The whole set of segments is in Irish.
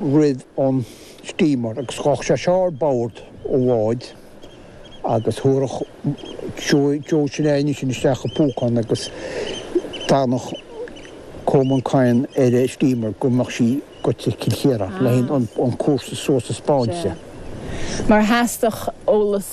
rith an steamer agus ghabhfadh sé suas ar bord an bháid agus thabharfadh Joe sin air ansin isteach an púcán agus d'fhanfadh Colman Coyne ar an steamer go mbeadh sí go dtí Cill Chiaráin le haghaidh an cúrsa suas a thaispeáint. Sea. Mar theastaigh eolas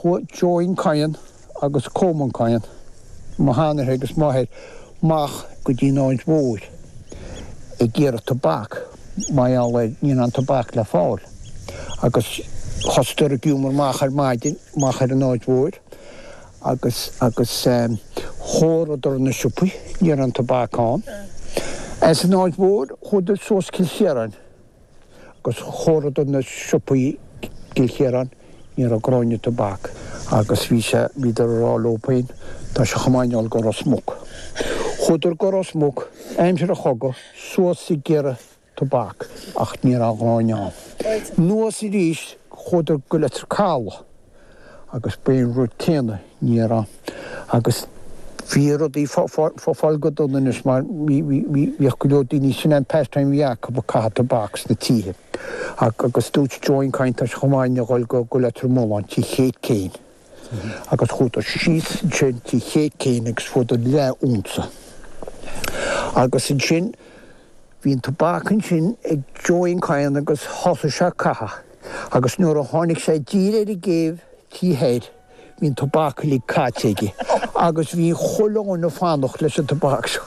Chuaigh Joeen Coyne agus Colman Coyne, mo sheanathair agus m'athair, amach go dtí an Aird Mhóir ag iarraidh tobac, mar gheall ar ní raibh aon tobac le fáil, agus thosaigh siad ag iomradh amach ar maidin amach ar an Aird Mhóir agus agus thóraíodar na siopaí, ní raibh aon tobac ann. As an Aird Mhóir chuadar suas Cill Chiaráin. Agus thóraíodar na siopaí i gCill Chiaráin, ní raibh gráinne tobac agus bhí sé, bhíodar ag rá leo féin, tá sé chomh maith dhúinn a dhul go Ros Muc. Chuadar go Ros Muc, aimsir an chogadh, suas ag iarraidh tobac ach ní raibh gráinne ann. Anuas aríst, chuadar go Leitir Calaidh. agus ba é an rud céanna, ní raibh aon, agus bhí rudaí fá, fá, fá, fáil go dona anois mar bhí, bhí, bhí, bhíodh go leor daoine, sin é an pastime a bhí acu, ag caitheamh tobac sna tithe. Ach, agus dúirt Joeen Coyne tá sé chomh maith dhúinn a dhul go, go Leitir Mealláin, tigh Khate Kane, agus chuadar síos ansin tigh Khate Kane agus fuadar leath unsa. Agus ansin, bhí an tobac ansin ag Joeen Coyne agus thosaigh sé ag caitheamh. Agus nuair a tháinig sé i dtír ar an gcéibh tí thoir, bhí an tobac uilig caite aige agus bhí chuile dhuine ag fanacht leis an tobac seo.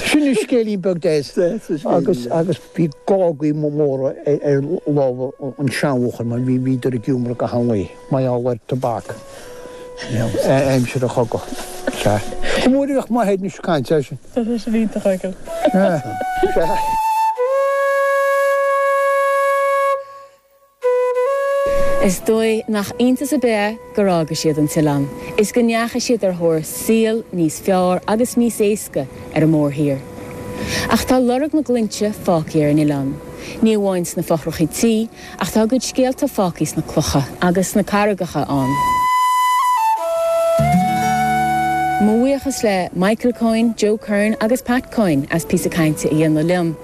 Sin an scéilín beag deas agus agus bhí gágaí móra ar lámha an seanbhuachaill mar bhí bhíodar ag iomradh go han-luí. Mar gheall ar tobac aimsir an chogadh is ea é. Go mór a bheadh mo Shéadna ag caint air sin. Tá sé sin iontach aige. Is dóigh nach iontas ar bith é gur fhága siad an t-oileán is go ndeachaigh siad ar thóir saoil níos fearr agus níos éasca ar an mórthír. Ach tá lorg na nglúinte fágtha ar an Oileán, ní amháin sna fothrachaí tí, Ach tá a gcuid scéalta fágtha sna clocha agus sna carraigeacha ann. Mo bhuíochas le Michael Coyne, Joe Curran agus Pat Coyne as píosa cainte a dhéanamh liom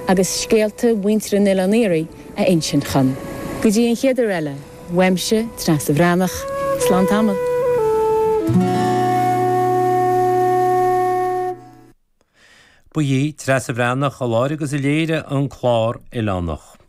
agus scéalta mhuintir an Oileáin Iarthaigh a insint dhom. Go dtí an chéad uair eile, uaimse, Treasa Bhreathnach, slán tamall. Ba í Treasa Bhreathnach a láithrigh agus a léirigh an clár Oileánach.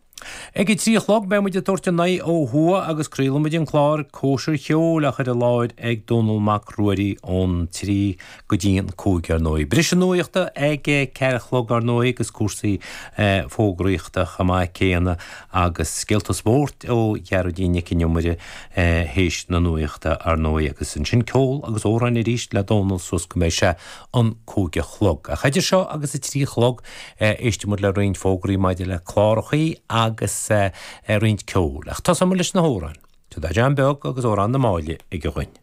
Ag a trí a chlog beidh muid ag tabhairt ár n-aghaidh ó thuaidh agus craolfaidh muid an clár Cóisir Cheoil á chur i láthair ag Dónall Mac Ruairí ón trí go dtí an cúig ar ndóigh. Briseadh nuachta ag a ceathair a chlog ar ndóigh agus cúrsaí fógraíochta chomh maith céanna agus scéalta spóirt ó Ghearóidín Nic an Iomaire théis na nuachta ar ndóigh agus ansin ceol agus amhráin arís le Dónall suas go mbeidh sé an cúig a chlog. Ach idir seo agus a trí a chlog éistfidh muid le roinnt fógraí maidir le clárachaí agus roinnt ceoil. Ach tosóidh muid leis na hamhráin. Tá Darren Beag agus Amhrán na Máille aige dhuinn.